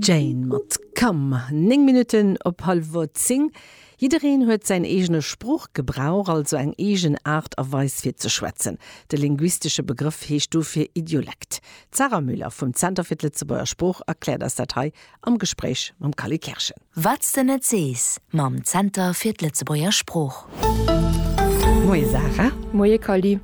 Jane mat Come. Néng Minutten op hallwer zéng. Jiddereen huet säin eegene Sproochgebrauch, also eng eegen Aart a Weis fir ze schwätzen. De linguistesche Begrëff heescht dofir Idiolekt. D'Sarah Müller vum Zenter fir d'Lëtzebuerger Sprooch erkläert eis dat hei am Gespréich mam Kally Kerschen. Wat s de net sees mam Zenter fir d'Lëtzebuerger Sprooch. Moie Sarah. Moie Kally.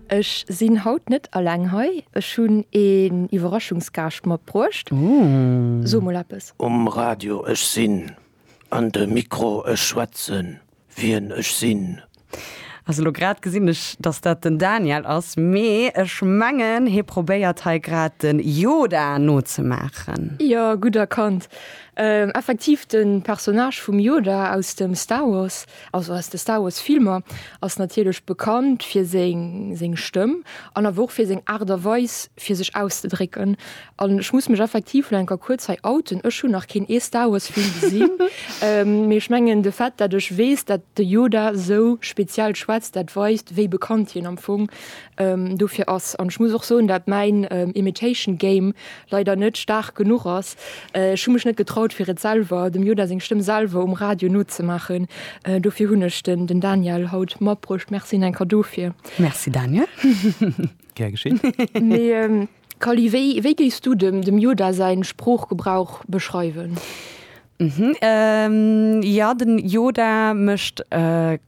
Ech sinn haut net alleng hei, ech hunn een Iwwerraschungsgaascht matbruecht. So mol eppes. Um Radio, ech sinn an de Mikro, ech schwätzen. wien ech sinn. Also lo grad gesinn ech dass dat den Daniel ass, mee ech mengen hie probéiert hei grad den Yoda nozemaachen. Jo, gutt erkannt. Effektiv, de Personnage vum Yoda aus dem Star Wars, also aus de Star Wars Filmer, ass natierlech bekannt fir seng Stëmm an awer och fir seng Aart a Weis fir sech auszedrécken. An ech muss mech effektiv lo enker kuerz hei outen, ech hunn nach keen ee Star Wars Film gesinn. Mee ech mengen de Fait, datt ech weess, datt de Yoda sou speziell schwätzt, dat weist wéi bekannt hien am Fong dofir ass. An ech muss och soen, datt mäin Imitation Game leider net staark genuch ass. Ech hu mech net getraut fir et selwer, dem Yoda seng Stëmm selwer um Radio nozemaachen. Dofir hunn ech den Daniel haut matbruecht. Merci enker dofir. Merci Daniel. Gär geschéen. Mee Kally, wéi géifs du dem Yoda säin Sproochgebrauch beschreiwen? Jo, den Yoda mécht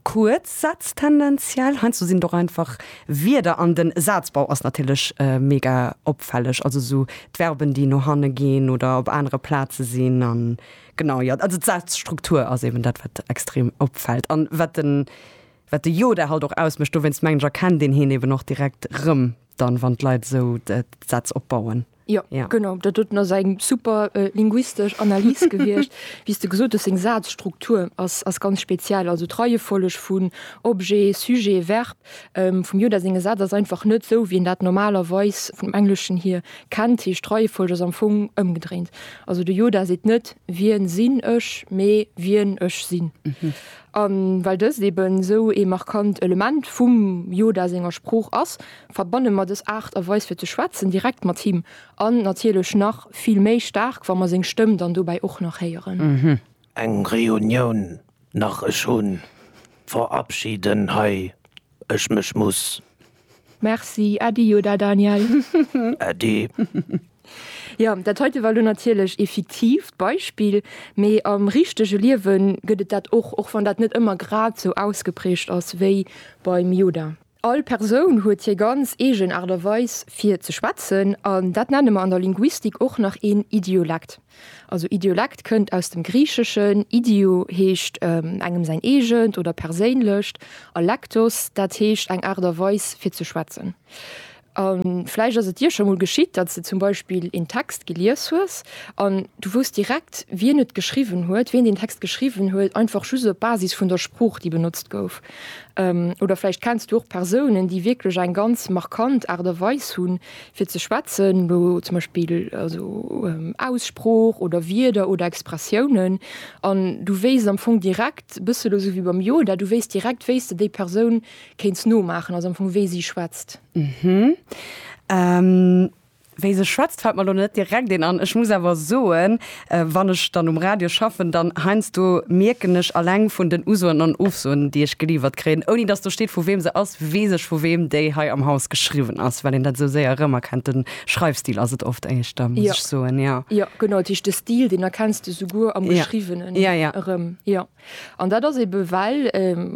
kuerz Sätz tendenziell. Heiansdo sinn et och einfach Wierder. An den Sazbau ass natierlech mega opfälleg. Also esou d'Verben, déi no hanne ginn oder op anere Plaze sinn. An genau, jo, also d'Sazstruktur ass eben dat, wat extrem opfält. An wat den. Wat de Yoda halt och ausmécht, dowéinst mengen ech erkennt een hien eben och direkt rëm dann, wann d'Leit esou d'Sätz opbauen. Jo, genau, dat doten ass eng super linguistesch Analys gewiescht. Wéi s de gesot hues, seng Sazstruktur ass ganz speziell, also d'Reiefolleg vun Objet, Sujet, Verb vum Yoda senge Sätz ass einfach net esou, wéi een dat normalerweis vum Engleschen hier kennt, heescht d'Reiefolleg ass am Fong ëmgedréint. Also de Yoda seet net wien sinn ech, mee wien ech sinn. A well dëst eben esou ee markant Element vum Yoda senger Sprooch ass, verbanne mer dës Aart a Weis fir ze schwätzen direkt mat him. An natierlech nach vill méi staark, wa mer seng Stëmm dann dobäi och nach héieren. Eng Reunioun nach, ech hunn verabschiden hei ech mech muss. Merci Äddi Yoda Daniel. Äddi. Jo, dat heite war lo natierlech ee fiktiivt Beispill, mee am richtege Liewe gëtt et dat och, och wann dat net ëmmer grad sou ausgeprägt ass wéi beim Yoda. All Persoun huet hir ganz eegen Aart a Weis fir ze schwätzen, an dat nenne mer an der Linguistik och nach een Idiolekt. Also Idiolekt kënnt aus dem Griicheschen, idio heescht engem säin eegent oder perséinlecht a lektos, dat heescht eng Aart a Weis fir ze schwätzen. A vläicht ass et dir scho mol geschitt, datt s de zum Beispill een Text gelies hues an du wousst direkt, wien et geschriwwen huet, wien deen Text geschriwwen huet, einfach just op Basis vun der Sprooch, déi benotzt gouf. Oder vläicht kenns du och Persounen, déi wierklech eng ganz markant Aart a Weis hunn, fir ze schwätzen, wou zum Beispill also Aussprooch oder Wierder oder Expressiounen an du wéisst am Fong direkt bësse elo esou wéi beim Yoda, du wéisst direkt wéi s de déi Persoun kéints nomaachen, also am Fong wéi si schwätzt. Wéi se schwätzt fält mer elo net direkt een an. Ech muss awer soen. Wann ech dann um Radio schaffen, dann heiansdo mierken ech alleng vun den Usoen an Ofsoen, déi ech geliiwert kréien, ouni dass do steet, vu weem se ass, weess ech, vu weem déi hei am Haus geschriwwen ass, well een dat esou séier erëmerkennt. De Schreifstil ass et oft éischter, muss ech soen, jo. Jo, genau, dat heescht, de Stil, deen erkenns de souguer am Geschriwwenen erëm, jo. An dat ass ebe well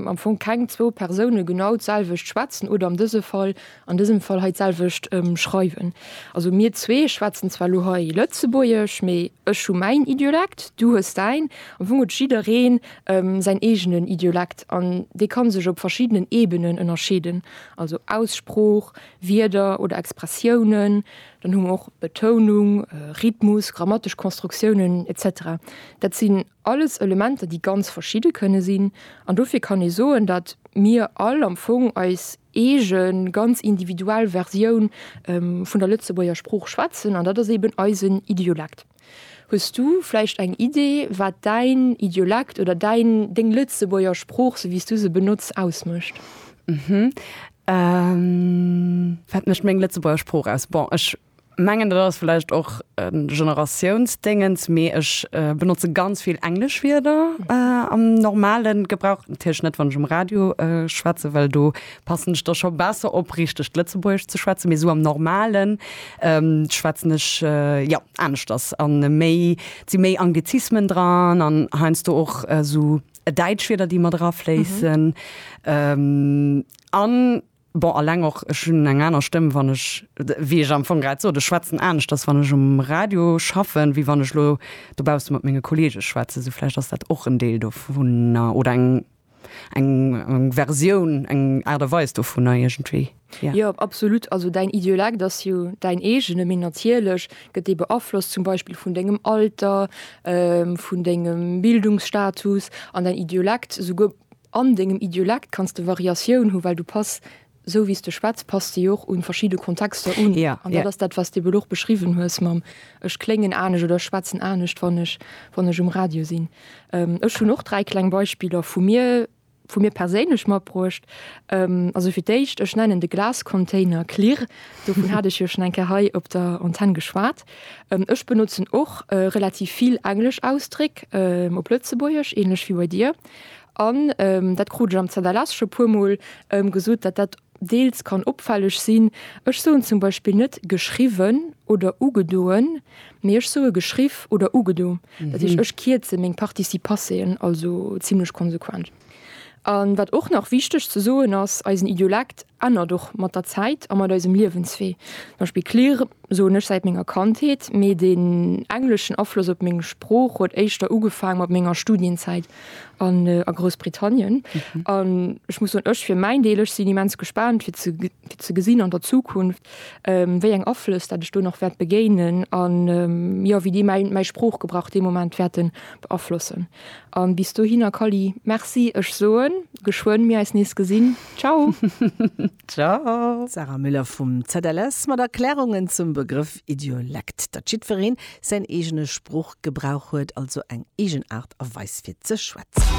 am Fong keng zwou Persoune genau d'selwecht schwätzen oder an dëse Fall, an dësem Fall hei d'selwecht schreiwen. Also mir zwee schwätzen zwar elo hei Lëtzebuergesch, mee ech hu mäin Idiolekt, du hues däin. Am Fong huet jidderee säin eegenen Idiolekt an dee ka sech op verschiddenen Ebenen ënnerscheeden, also Aussprooch, Wierder oder Expressiounen. Dann hu mer och Betounung, Rhythmus, grammatesch Konstruktiounen, etc. Dat sinn Alles Elementer, déi ganz verschidde kënne sinn. An dofir kann ee soen, datt mir all am Fong eis eege ganz individuell Versioun vun der Lëtzebuerger Sprooch schwätzen, an dat ass eben eisen Idiolekt. Hues du vläicht eng Idee, wat däin Idiolekt oder däin, deng Lëtzebuerger Sprooch, sou wéi s du se benotz, ausmécht? Wat mécht meng Lëtzebuerger Sprooch aus? Bon, ech mengen dat ass vläicht och e Generatiounsdéngens, mee ech benotze ganz vill englesch Wierder am normale Gebrauch. Natierlech net, wann ech um Radio schwätze, well do passen ech da scho besser op, richtegt Lëtzebuergesch ze schwätzen. Mee esou am Normalen schwätzen ech, jo, aneschters an méi, et si méi Anglizismen dran an heiansdo och esou Däitschwierder, déi mat erafléissen an. Bon, alleng och, ech hunn eng aner Stëmm, wann ech, wéi ech am Fong grad sot, ech schwätzen aneschters, wann ech um Radio schaffen, wéi wann ech elo dobausse mat menge Kolleege schwätzen. Sou vläicht ass dat och en Deel dovunner oder eng, eng Versioun, eng Aart a Weis dovunner iergendwéi. Jo, absolut. Also däin Idiolekt ass jo däin eegene, mee natierlech gëtt dee beaflosst zum Beispill vun dengem Alter, vun dengem Bildungsstatus an däin Idiolekt souguer, An dengem Idiolekt kanns de Variatioun hu well du pass, sou wéi s de schwätz, pass de jo och un verschidde Kontexter un. An dat ass dat, wat s de elo och beschriwwen hues mam ech kléngen anescht oder ech schwätzen anescht, wann ech wann ech um Radio sinn. Ech hunn och dräi kleng Beispiller vu mir vu mir perséinlech matbruecht. Also fir d'éischt, ech nennen de Glascontainer Klirr. Dovun hat ech jo schonn eng Kéier hei op der Antenn geschwat. Ech benotzen och relativ vill englesch Ausdréck op Lëtzebuergesch, ähnlech wéi bei dir. An dat krut ech am Zanderless scho puermol gesot, datt dat deels kann opfälleg sinn. Ech soen zum Beispill net geschriwwen oder ugedoen, mee ech soe geschriff oder ugedo. Dat heescht, ech kierze meng Participasseen also zimmlech konsequent. A wat och nach wichteg ze soen ass, Eisen Idiolekt ännert och mat der Zäit a mat eisem Liewenswee. Zum Beispill clear soen ech säit menger Kandheet, mee den engleschen Afloss op meng Sprooch huet éischter ugefaang mat menger Studienzäit an a Groussbritannien. An ech muss soen, ech fir mäin Deel, ech sinn immens gespaant fir ze fir ze gesinn an der Zukunft wéi eng Aflëss dat ech do nach wäert begéinen an jo wéi déi mäin mäi Sproochgebrauch dee Moment wäerten beaflossen. An bis dohinner Kally, merci, ech soen geschwënn mir eis nees gesinn. Ciao. Ciao. D'Sarah Müller vum ZLS mat Erklärungen zum Begrëff Idiolekt, datt jiddwereen säin eegene Sproochgebrauch huet, also eng eegen Aart a Weis fir ze schwätzen.